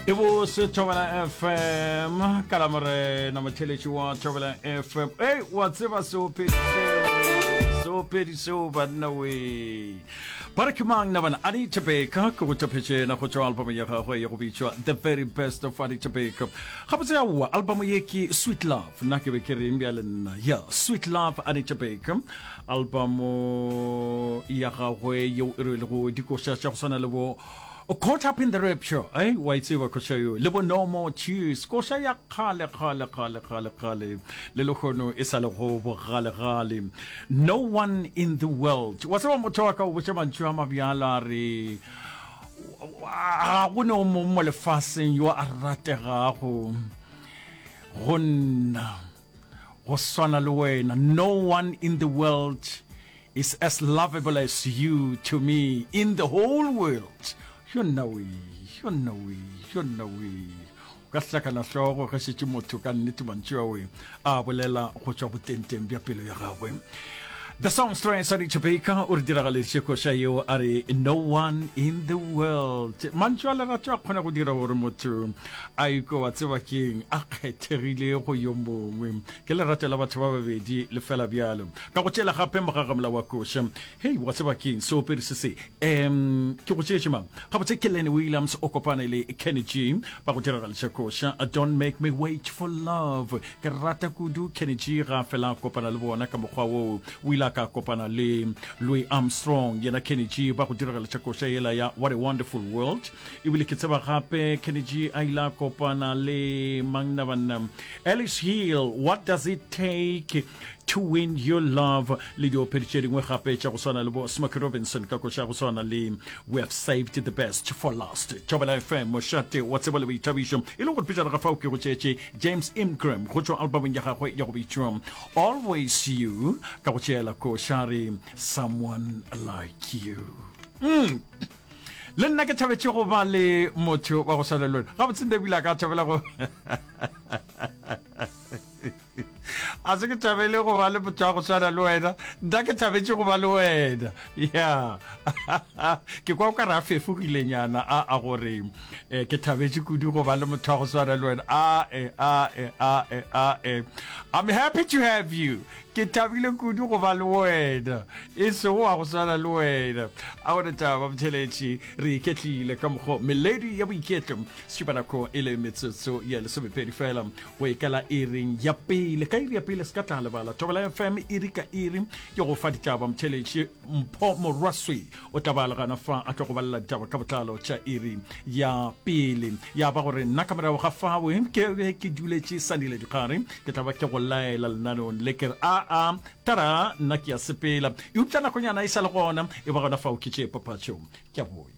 e bose thobela fm ka la morena motheletši wa thobela fm ei wa tseba seopedi seo seopedi seo banna we ba re ke mang na bana adi tebeka ke go tephetšena go tšwa albamo ya gagwe ya go bitšwa the very best of adi tebeka gabotse yaowa albamo ye ke sweet love nna ke be ke reng bjale nna ya sweet love adi tebeka albamo ya gagwe yeo e rwelego dikoša tša go swana le bo caught up in the rapture eh wa e tseba koša yo le bo no more tears koša ya kgale kgale kgale kgale kgale le lekgono e sa le go bogalegale no one in the world wa tseba motho wa ka o botša mantšu a mabjalo a re ga go ne o mongwe mo lefaseng yo a rategago go nna go swana le wena no one in the world is as lovable as you to me in the whole world yo nna we yo nna we yo nna we o ka hlakana hlogo ge šetše motho ka nnete mantšu a we a bolela go tšwa botenteng bja pelo ya gagwe The song story sa Richard Baker o re diragaletše koša yeo a re no one in the world mantšu a lerato a kgona go dira gore motho a ikwe wa tseba keng a kgethegile go yo mongwe ke lerato la batho ba babedi le fela bjalo ka go tšela gape mogagamla wa koša hei wa tseba keng seopedi se se um ke go tšeetše mang gabotse ke lenny williams o kopane le kenny g ba go diragališa koša don't make me wait for love ke rata kudu kenny g ga a fela a kopana le bona ka mokgwa woo o ile a ka kopana le louis armstrong yena kenny g ba go diragališa koša yela ya what a wonderful world ebile ke tseba gape kennedy a ile a kopana le mangna banna alice hill what does it take to win your love le diopedi tše dingwe gape tša go swana le bo smoky robinson ka koša go swana le we have saved the best for last tšobela fm mošate wa tsebo le boithabišo e le gore pejana ga fao ke go tšeetše james ingram go tšwa albumong ya gagwe ya go bitšwa always you ka go tšeela košare someone like you mm. le nna ke thabetše go ba le motho wa go swana le wena gabotse nebile a ka thabela go a se ke thabele go ba le motho wa go swana le wena nna ke thabetše go ba le wena ya ke kwa o ka re a fefogilenyana a a gore eh, ke thabetše kudu go ba le motho wa go swana le wena a e a e a e a e i'm happy to have you Ke thabile kudu go ba le wena, e sego wa go swana le wena. A gona taba Mtheletši, re iketlile ka mokgo melodi ya boiketlo Sešibanako e le metsotso ya lesomepedi fela go e kala iring ya pele. Ka iri ya pele se ka tla lebala Thobela FM iri ka iri ke go fa ditaba Mtheletši Mpho Morwaswee. o tla bala gana fa a tlo go balela ditaba ka botlalo tša iri ya pele ya ba gore nna ka morago ga fawe ke be ke duletše sanile dikgare ke tla ba ke go laela lenaneong le ke re aa tara nna ke ya sepela eupša nakonyana e sa le gona e ba gona fao ke tšee papatšo ke a boya